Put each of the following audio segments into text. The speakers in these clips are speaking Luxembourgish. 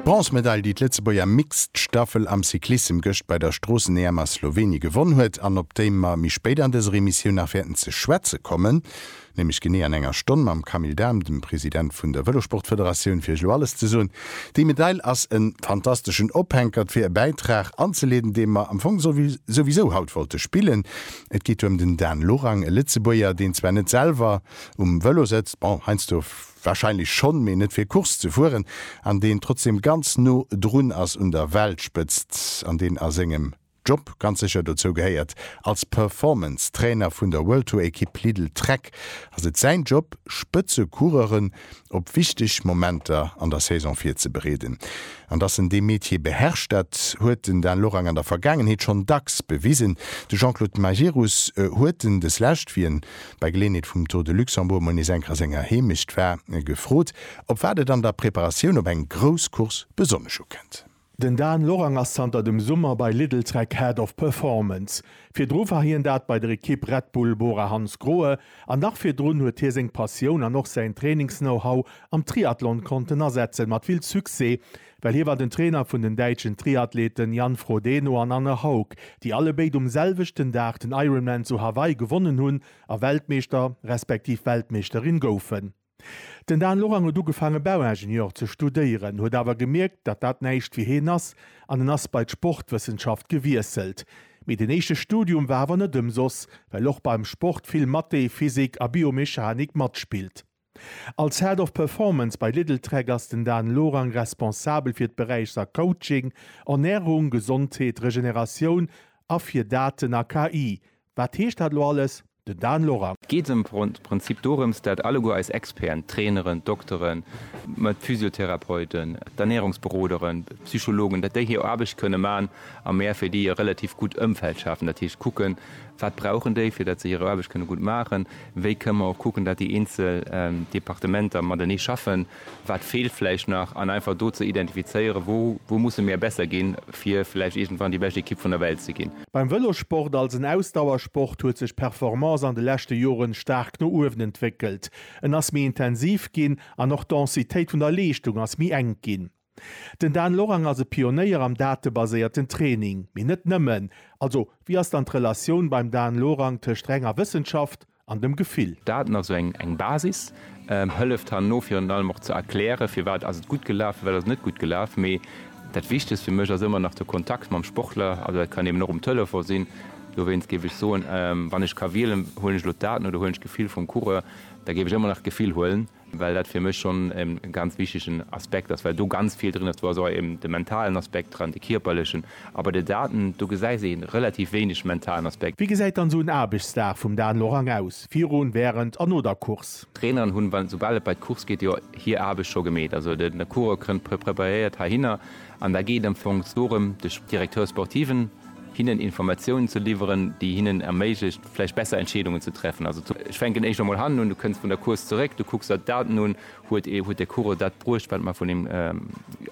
D'Bronzemedail, déi d'Lëtzebuerger Mixed Staffel am Cyclissem gëscht bei der Stroossen-EM a Slowenien gewonn huet an op déi mer méi spéit an dëser Emissioun nach wäerten ze schwätze kommen, nämlech genee an enger Stonn mam Camille Dahm, dem President vun der Vëlosportfederatioun, fir iech elo alles ze soen. Déi Medail ass e fantasteschen Ophänkert fir e Bäitrag anzeleeden, dee mer am Fong souwisou haut wollte spillen. Et geet ëm den Dan Lorang, e Lëtzebuerger, deen zwar net selwer um Vëlo sëtzt, bon, heiansdo Wahrscheinlech schonn, mee net fir Course ze fueren, an deen trotzdem ganz no drun ass un der Weltspëtzt, an deen a sengem Job ganz sécher dozou gehéiert. Als Performance Trainer vun der World Tour Ekipp Lidl Trek ass et säin Job Spëtze Coureuren op wichteg Momenter an der Saison virzebereeden. An dass en dee Metier beherrscht, dat huet den Dan Lorang an der Vergaangenheet schonn dacks bewisen. De Jean-Claude Majerus huet en deslescht wéi en bei Geleenheet vum Tour de Luxembourg mol nees eng Kéier a senger Heemecht war, gefrot, op wat et an der Preparatioun op eng grouss Course besonnesch ukënnt. Den Dan Lorang ass zanter dem Summer bei Lidl-Trek Head of Performance. Virdru war hien dat bei der Ekipp Red Bull Bora Hansgrohe an nach virdrun huet hie seng Passioun an och säin Trainings-Know-How am Triathlon konnten asetzen, mat vill Succès, Well hie war den Trainer vun den däitschen Triathleten Jan Frodeno an Anne Haug, déi allebéid um selwechten Dag den Ironman zu Hawaii gewonnen hunn a Weltmeeschter respektiv Weltmeeschterin goufen. Den Dan Lorang huet ugefaange Bauingenieur ze studéieren, huet awer gemierkt, datt dat näischt fir heen ass an en ass bei d'Sportwëssenschaft gewiesselt. Mee den éischte Studium war awer net ëmsoss, well och beim Sport vill Mathé, Physik a Biomechanik matspillt. Als Head of Performance bei Lidltrek ass den Dan Lorang responsabel fir d'Beräichser Coaching, Ernärung, Gesondheet, Regeneratioun a fir Daten a KI. Wat heescht dat elo alles? Den Dan Lorang. Et geet am Prinzip dorëms, dat alleguer eis Experten, d'Traineren, d'Dokteren, mä d'Physiotherapeuten, d'Ernärungsberoderen, d'Psychologen, dat déi hir Aarbecht kënne man a mär fir déi e relativ gutt Ëmfeld schafen. Dat heescht kucken, wat brauchen déi, fir dat se hir Aarbecht kënne gutt maachen. Wéi kënne mer och kucken, datt déi eenzel Departementer matenee schaffen, wat feelt vläicht nach, an einfach do ze identifizéieren, wou, wou musse mir besser ginn, fir vläicht iergendwann déi bescht Ekipp vun der Welt ze ginn. Beim Vëlossport als en Ausdauersport huet sech d'Performance an de leschte Joren staark no uewen entwéckelt. En ass méi intensiv ginn an och d'Densitéit vun der Leeschtung ass méi enk ginn. Den Dan Lorang ass e Pionéier am datebaséierten Training, mee net nëmmen. Also, wéi ass dann d'Relatioun beim Dan Lorang tëscht renger Wëssenschaft an dem Gefill? Daten, also eng Basis, hëlleft herno virun allem och ze erklären, firwat ass et gutt gelaf, firwat ass et net gutt gelaf. Mee dat Wichtegst fir mech ass ëmmer nach de Kontakt mam Sportler. Also dat kann eben och um Telefon sinn. Dowéinst géif ech soen, wann ech ka wielen, huelen ech elo d'Daten oder huelen ech d'Gefill vum Coureur, da géif ech ëmmer nach d'Gefill huelen. well dat fir mech schonn e ganz wichtegen Aspekt ass, well do ganz vill drin ass. Do ass och eben de mentalen Aspekt dran, de kierperlechen, a bei de Daten, do gesäis een relativ wéineg mentalen Aspekt. Wéi gesäit dann esou en Aarbechtsdag vum Dan Lorang aus, virun, wärend an no der Course? D'Traineren hunn, wann, soubal et bei d'Course geet, jo hir Aarbecht scho gemeet. Also de Coureur kënnt preparéiert heihinner an da geet am Fong dorëm, de Directeur sportiven, hinnen Informatiounen ze liwweren, déi hinnen erméiglecht vläicht besser Entscheedungen ze treffen. Also ech fänken éischter mol hannen un, du kënns vun der Course zeréck, du kucks der d'Daten un, huet ee, huet de Coureur dat bruecht, wat mer vun him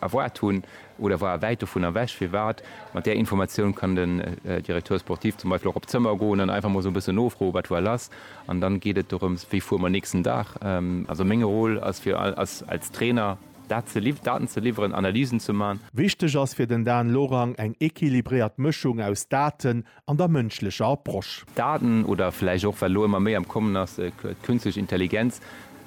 erwaart hunn oder war e wäit dovun ewech, firwat? Mat där Informatioun kann den Directeur sportif zum Beispill och op d'Zëmmer goen an einfach mol esou e bëssen nofroen, wat war lass? An dann geet et dorëms, wéi fuere mer nächsten Dag? Also meng Rôle ass fir, als Trainer, Daten ze liwweren, Analysen ze man. Wichteg ass fir den Dan Lorang eng equilibréiert Mëschung aus Daten an der mënschlecher Approche. Daten, oder vläicht och, wat elo ëmmer méi am Kommen ass, d'künstlech Intelligenz,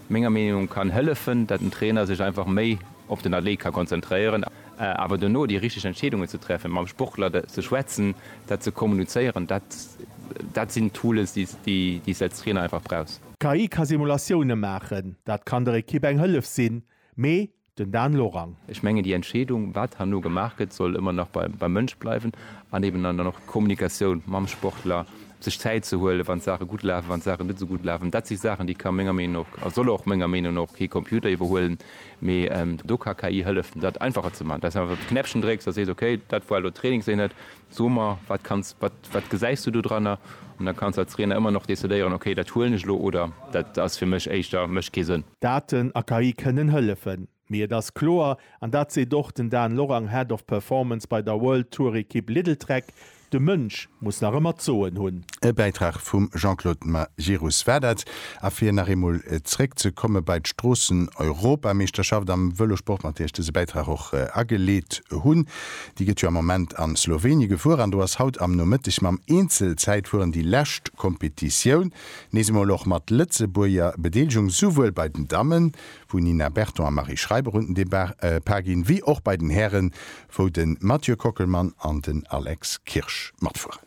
menger Meenung no, kann hëllefen, datt den Trainer sech einfach méi op den Athlet ka konzentréieren. Awer dono déi richteg Entscheedungen ze treffen, mam Sportler ze schwätzen, dat ze kommunizéieren, dat sinn Tools, déi s de als Trainer einfach brauchs. D'KI ka Simulatioune maachen, dat kann der Ekipp eng Hëllef sinn, mee den Dan Lorang. Ech mengen, déi Entscheedung, wat herno gemaach gëtt, soll ëmmer nach beim Mënsch bleiwen an eben dann och d'Kommunikatioun mam Sportler, sech Zäit ze huelen, wann d'Saache gutt lafen, wann d'Saache net esou gutt lafen. Dat si Saachen, déi ka menger Meenung no och a soll och menger Meenung no och kee Computer iwwerhuelen, mee do ka KI hëllefen, dat einfacher ze maachen, dass einfach e Knäppchen drécks a sees, okay, dat war elo Trainingseenhet, So mer, wat kanns, wat, wat gesäis du do dranner? An da kanns de als Trainer ëmmer nach decidéieren, okay, dat huelen ech elo oder dat ass fir mech éischter, mécht kee Sënn. Daten a KI kënnen hëllefen, mee et ass kloer, an dat seet och den Dan Lorang, Head of Performance bei der World Tour Ekipp Lidl-Trek, de Mënsch muss nach ëmmer d'Soen hunn. E Bäitrag vum Jean-Claude Majerus war dat. A fir nach eemol zréck ze komme bei d'Stroossen-Europameeschterschaft am Vëlosport, mat där ech dëse Bäitrag och ageleet hunn, Déi gëtt jo am Moment an Slovénie gefuer an do ass haut am Nomëtteg mam Eenzelzäitfueren déi lescht Kompetitioun, nees emol och mat Lëtzebuerger Bedeelegung, souwuel bei den Dammen, wou Nina Berton a Marie Schreiber un den Depart ginn, wéi och bei den Hären, wou de Mathieu Kockelmann an den Alex Kirsch matfueren.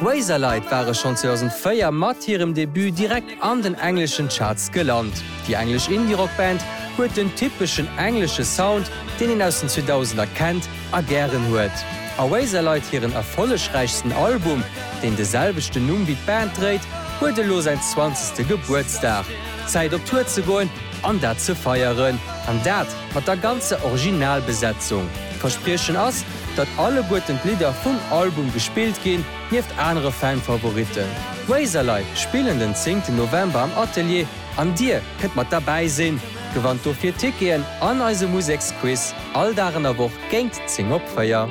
Razorlight ware schonn 2004 mat hirem Debut direkt an den engleschen Charts gelant. Déi englesch Indie-Rock-Band huet den typeschen englesche Sound, deen een aus den 2000er kennt a gären huet. A Razorlight hiren erfollegräichsten Album, deen de selwechten Numm wéi d'Band dréit, huet elo säin zwanzegste Gebuertsdag. Zäit op Tour ze goen! An dat ze feieren, an dat mat der ganzer Originalbesetzung. D'Verspriechen ass, datt alleguerten d'Lidder vum Album gespillt ginn, nieft anere Fan-Favoritten. D'Razorlei spillen den zéngten November am Atelier an dir kënnt mat derbäi sinn. Gewannt dofir Ticketen an eise Museksquiz all Dag an der Woch géint zéng op véier.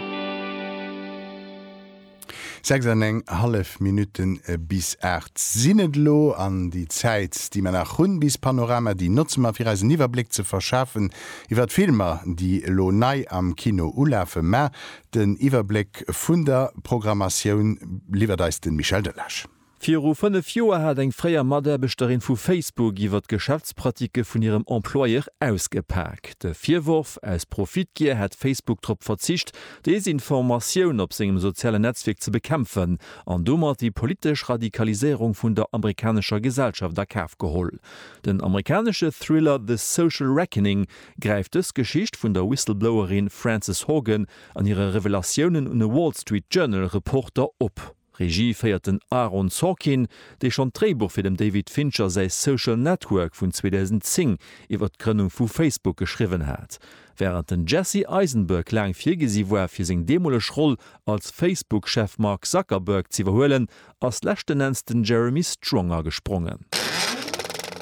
Sechs an eng hallef Minutten bis aacht sinn et elo, an déi Zäit, déi mer nach hunn bis Panorama, déi notze mer fir eis en Iwwerbléck ze verschafen iwwer d'Filmer, déi elo nei am Kino ulafen. Mä den Iwwerbléck vun der Programmatioun liwwert eis de Michel Delage. Viru fënnef Joer hat eng fréier Mataarbechterin vu Facebook iwwer d'Geschäftspraticke vun hirem Employeur ausgepak. De Virworf, aus Profitgier hätt Facebook drop verzicht, Desinformatioun op sengem sozialen Netzwierk ze bekämpfen an domat déi politesch Radikaliséierung vun der amerikanescher Gesellschaft a Kaf geholl. Den amerikanesche Thriller The Social Reckoning gräift dës Geschicht vun der Whistleblowerin Frances Haugen an hire Revelatiounen un e Wall Street Journal Reporter op. Regie féiert den Aaron Sorkin, dee schonn d'Dréibuch fir dem David Fincher säi Social Network vun 2010 iwwer d'Grënnung vu Facebook geschriwwen hat. Wärend den Jesse Eisenberg laang virgesi war fir seng deemoleg Roll als Facebook-Chef Mark Zuckerberg z'iwwerhuelen, ass leschten Enns den Jeremy Strong agesprongen.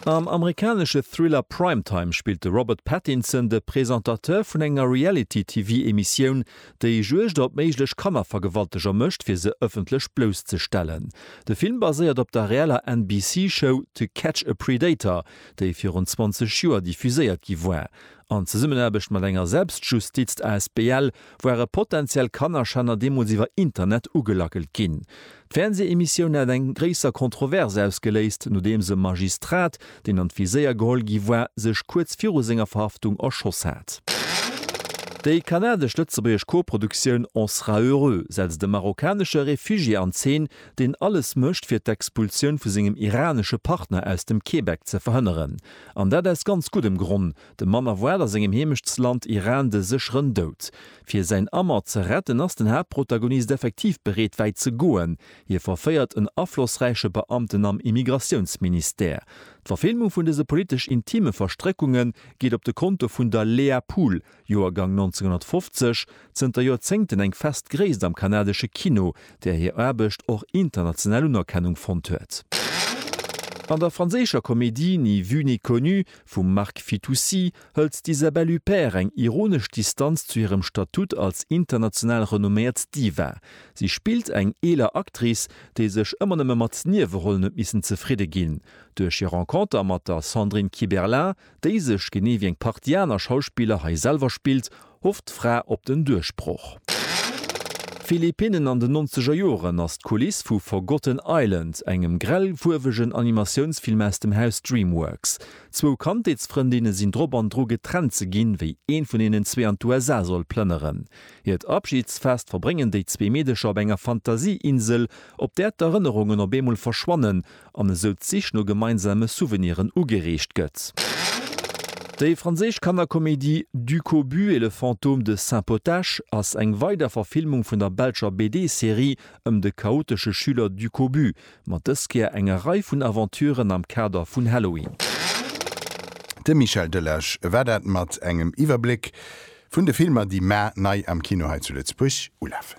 Am amerikanesche Thriller Primetime spillt de Robert Pattinson de Presentateur vun enger Reality-TV-Emissioun, déi Juegd op méiglech Kannervergewalteger mécht, fir se ëffentlech blousszestellen. De Film baséiert op der reeller NBC-Show To Catch a Predator, déi virun 20 Joer diffuséiert gi war. An Zesummenaarbecht mat enger Selbstjustizt-Asbl ware potentiell Kannerschänner deemools iwwer Internet ugelackelt ginn. D'Fernsehemissioun hat eng gréisser Kontrovers ausgeléist, nodeems e Magistrat, deen an d'Viséier geholl gi war, sech kuerz viru senger Verhaftung erschoss hat. Déi kanadesch-lëtzebuergesch Koproduktioun On sera heureux setzt e marokkanesche Refugié an Zeen, deen alles mécht, fir d'Expulsioun vu sengem iranesche Partner aus dem Québec ze verhënneren. An dat aus ganz guddem Gronn, De Mann erwaart a sengem Heemechtsland Iran de sécheren Doud. Fir säin Amt ze retten, ass den Haaptprotagonist effektiv bereet wäit ze goen, hie verféiert en aflossräiche Beamten am Immigratiounsministère. D'Verfilmung vun dëse politesch intime Verstréckunge geet op de Konto vun der Léa Pool, Joergang 1950, zënter Joerzéngten eng fest Gréisst am kanadesche Kino, där hir Aarbecht och international Unerkennung fonnt huet. An der franséischer Komedie Ni vue ni connue vum Marc Fitoussi hëlt d'Isabelle Huppert eng ironesch Distanz zu hirem Statut als international renomméiert Diva. Si spillt eng eeler Actrice, déi sech ëmmer nëmme mat Niewerollen huet missen zefridde ginn. Duerch hir Renconter mat der Sandrine Kiberlin, déi sech, genee wéi eng Partie aner Schauspiller, hei selwer spillt, Hofft d'Fra op den Duerchbroch? Philippinnen an den nonzeger Joren ass d'Kuliss vu Forgotten Island, engem grellfuerwegen Animatiounsfilm aus dem Haus Dreamworks. Zwou Kandheetsfrëndinne sinn drop an dru getrennt ze ginn, wéi een vun hinnen zwee an d'USA soll plënneren. Hiert Abschidsfest verbréngen déi zwee Meedecher op enger Fantasieinsel, op där d'Erënnerungen op eemol verschwannen an esou d'Sich no gemeinsame Souveniren ugereegt gëtt. Déi franséisch Kannerkomedie Du cobu et le fantôme de Saint-Potache ass eng weider Verfilmung vun der belscher BD-Serie ëm de chaotesche Schüler Du cobu, mat dës Kéier enger Rei vun Aventuren am Kader vun Halloween. De Michel Delage war dat mat engem Iwwerbléck vun de Filmer, déi mar nei am Kino hei zu Lëtzebuerg ulafen.